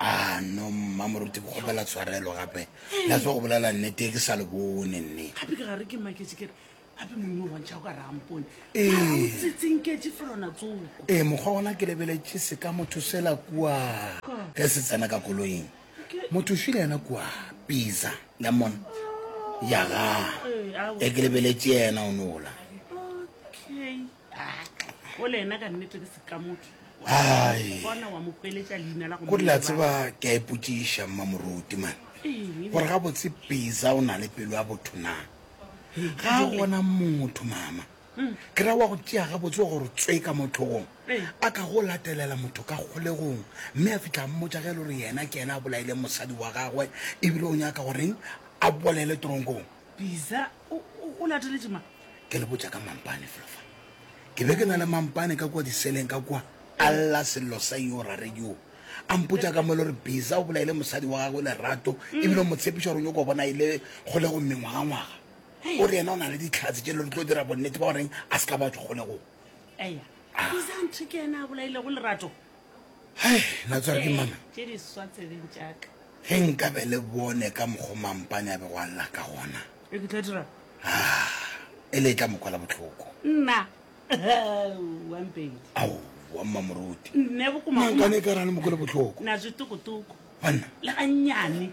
A no mma moruti go kgopela tshwarelo gape la tswa go bolela nnete ke sa le bone nne gape ke gare ke maketse kere gape monna o bontšha o ka re ampone Ee. tsetsenketse felona tsoko ee mokgwa gona ke lebeletše se ka motho sela kua ge se tsena ka koloing motho šwi le yena kua pizza la mona ya ga e ke lebeletše yena o nola okay ko dila tseba ke a ipotsiša mmamoruti mane gore ga botse pisa o na le pelo ya botho na ga a gona motho mama hmm. ke ra wa go tšea ga botse wa gore tswe ka mothogong a ka go latelela motho ka kgolegong mme a fitlha mmotsa ge e le gore yena ke ena a bolaileng mosadi wa gagwe ebile o nyaka goreng a bolele tronkong Biza, o, o, o lateletše mang? Ke le botša ka mampane felo fa. Ke be ke na le mampane ka kua diseleng ka kua, a lla sello sa yoo rare yoo. A mpotša ka mo le gore Biza o bolaile mosadi wa gagwe Lerato, e bile o mo tshepiša gore o nyoko bona e le kgolego mengwagangwaga. O re yena o na le ditlhatse tše le re tlo dira bonnete ba goreng a se ka ba tšwa kgolegong. Eya, Biza a nthe ke yena a bolailego Lerato. Hei, na tsware ke mama. Tše di swa tsebeng tšaka. Ge nka be le bone ka mokgo mampane a bego a lla ka gona. E ke tla dira. Ah, e le e tla mokwala botlhoko. Nna. Wa mpedi. Au, wa mmamoruti. Nne bokuma. Mankane ka rane mokwala botlhoko. Na zwi tuku tuku. Banna. Le ga nyane.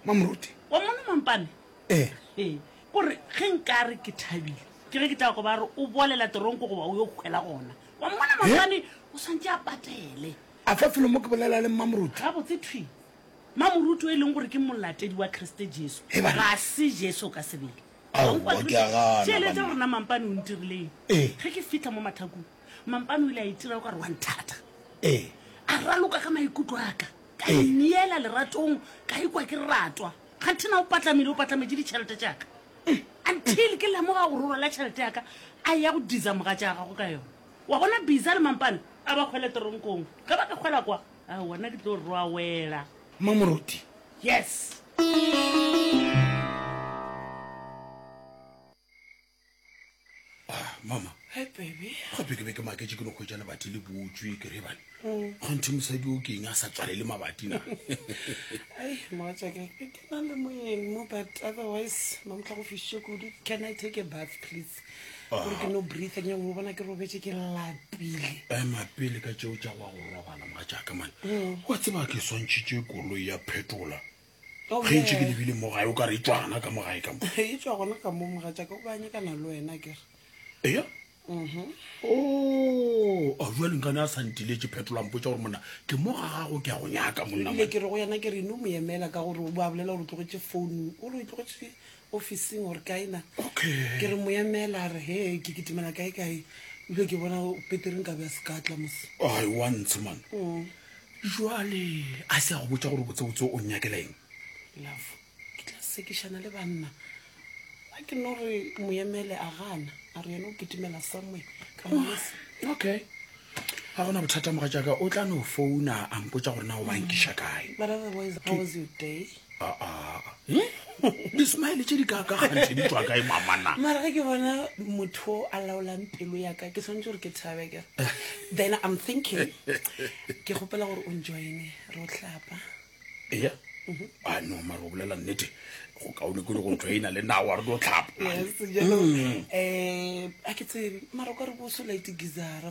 Mamoruti. Wa mona mampane. Eh. Eh. Gore ge nka re ke thabile. Ke ge ke tla go ba re o bolela toronko go ba o yo khwela gona. wa mmona maobane o swantse a patele a fa felo mo ke bolela le mmamoruti ga botse thwi mamoruti o e leng gore ke molatedi wa kriste jesu Hey, bana. ga se jesu o ka sebele Aowa, Wa utlwa, ke a gana, tšhelete banna. rona mampane o ntirileng Ee. ge ke fitlha mo mathakong mampane o ile a itira o ka re wa nthata ee a raloka ka maikutlo aka ka Ee. ineela leratong ka ikwa ke ratwa kganthe na o patlamile o patlametše ditšhelete tšaka eh, until ke lemoga gore o rwala tšhelete yaka a ya go diza moga tša gago ka yone wa bona bisa le mampane a ba kgwele teronkong ge ba ka kgwela kwa a wona ke tlo rwawela mamoruti yes Ah, mama Hi, baby. gape ke be ke maketse ke no kgwetsa lebati le botswe ke re bane kgonthe mosadi o keng a sa tswalele mabati na Ai, mogatšaka, ke ke na le moyeng mo, but otherwise, mamotla go fišitše kudu. Can I take a bath, please? Gore ke no breathe, ke nyako go bona ke robetše ke lapile. ema pele ka tšeo tša wa go robala mogatšaka mane wa tseba ke swantšhitše koloi ya phetola ge ntše ke lebile mo gae o ka re e tswana ka mo gae ka mo e tswa gona ka mo moga jaaka o banyekana le wena ke re eya mhm. o oh, a jwa lengane a santile tše phetolang potsa gore monna ke mo ga gago ke ya go nyaka monnaile ke re go yena ke re ne o mo emela ka gore o bo a bolela gore o tlogetse founu o re o tlogetse ofising gore kae na ke re moya meela a re he ke kitimela kae kae ebile ke bona petereng ka be a se ka tla mos ai wa ntsho man mm. jale a se a go botsa gore botsebotse o nyakela eng love ke tla sekišana le banna a ke no re moyemele a gana a re yena o kitimela somwe ka mos okay ga gona bothata moga jaaka o tla no founa a mpotsa gore na o bankiša kae but otherwise how was your day dismile tše di kakagantšhe di tswa kae mamana mara ge ke bona motho o a laolang pelo yaka ke tshwanetse gore ke thabe kere then i'm thinking ke kgopela gore o njoine re o tlapa ea mhm. a ah, no mara o bolela nnete go kaone kole go joina le nawa re tlo tlhapa um mm. eh, a ke tsebe mara ka re bo so lite gizara